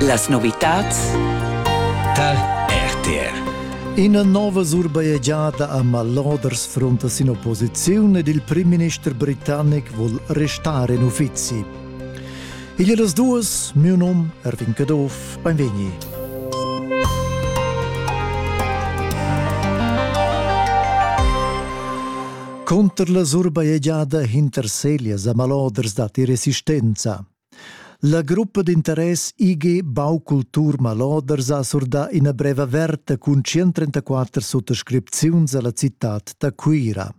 Las novitads tar RTR. Ina nova surbajegiada a Maloders fronta sin opposiziun ed il primminister britannic vul restar en uffizi. Igl è las duas, mio num Erwin Caduff, benvegni. Conter la surbajegiada hinter Selias a Maloders datti resistenza. La gruppa d'interess IG Baukultur Maloders ha surdà ina brev averta cun 134 suttascripziuns a la citad da Cuira.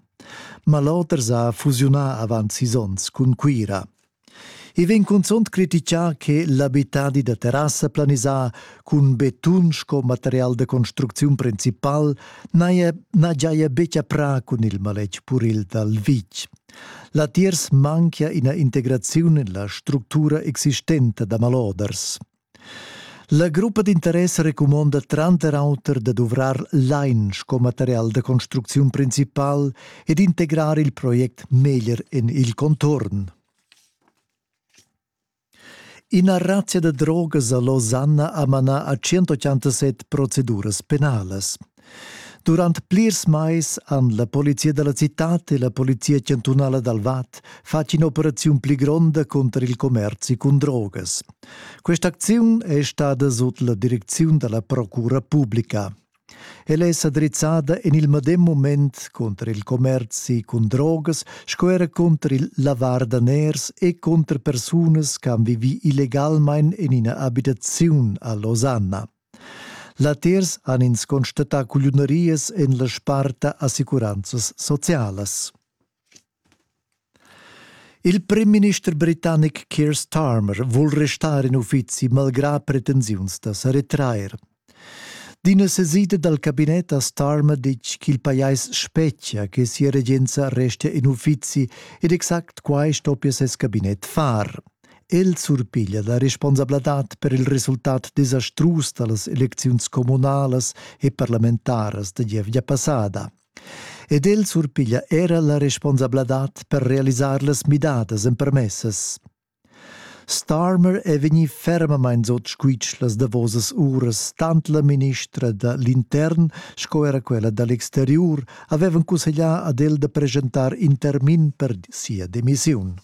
Maloders ha fusiunà avant sis onns cun Cuira. I vegn cunzunt critichà che l'abitadi da terrassa planisà cun betun sco material da construcziun principal n'haja giaja betg aprà cun il maletg puril dal vitg. Latiers manchia ina integraziun en la structura existenta da maloders. La gruppa d'interess recumonda tranter auter da duvrar lain sco material da construcziun principal e d'integrar il project meglier en il contorn. Ina razia da drogas ha Losanna ha manà a 187 proceduras penalas. Durant plirs mais han la polizia da la citad e la polizia chantunala dal Vad fatg in'operaziun pli gronda cunter il commerzi cun drogas. Questa acziun è stada sut la direcziun da la procura publica. Ella è sa drizzada en il medem mument cunter il commerzi cun drogas sco era cunter il lavar daners e cunter persunas che han vivì illegalmain en ina abitaziun a Losanna. Latiers han ins constatà cugliunerias en la sparta assicuranzas socialas. Il primminister britannic Keir Starmer vul restar in uffizi malgrà pretensiuns da sa retrair. D'ina sesida dal cabinet ha Starmer ditg ch'il pajais spetgia che sia regenza restia in uffizi ed exact quai stoppia ses cabinet far. El surpiglia la responsabladad per il resultat desastrus da las elecziuns communalas e parlamentaras da gievgia passada. ed el surpiglia era la responsabladad per realisar las midadas empermessas. Starmer è vegnì fermamain sot squitsch las davosas uras, tant la ministra da l'intern sco era quella da l'exteriur avevan cusseglià ad el da presentar in termin per sia demissiun.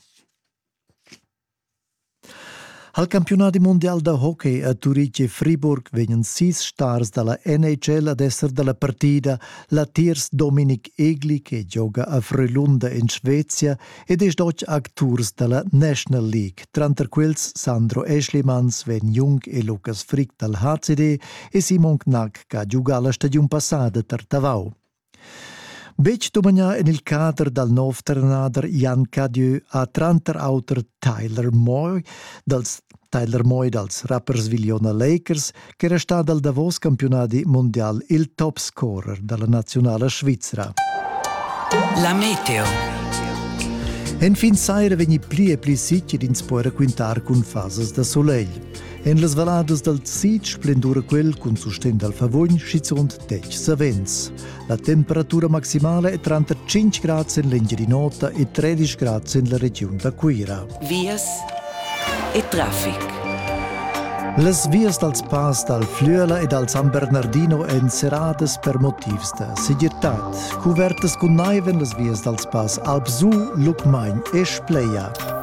Al campiunadi mundial da hockey a Turitg e Friburg vegnan sis stars dalla NHL ad esser dalla partida latiers Dominik Egli che gioga a Frölunda in Svezia ed esch doch acturs dalla National League. Tranter quels Sandro Eschlimans, Sven Jung e Lukas Frick dal HCD e Simon Knack che ha giugà la stagiun passada tar Tavau. Betg dumagnà en il cader dal nov trenader Jan Cadieu ha tranter auter Tyler Moy dals Tyler Moy dals rappers Viliona Lakers ch'era stà dal davos campiunadi mundial il topscorer da la naziunala svizra. La meteo. Enfin saira vegni pli e pli sitg ed ins po raquintar cun fasas da sulegl. En las valladas dal Sitg splendura quel cun sustegn dal Favogn schizunt detg savens. La temperatura maximala è tranter 5 grads en l'Engiadin'Ota e 13 grads en la regiun da Cuira. Vias e traffic. Las vias dals pass dal Flüela e dal San Bernardino èn serradas per motivs da segirtad. Cuvertas cun naiv en las vias dals pass Alpsu, Lucmagn e Spleia.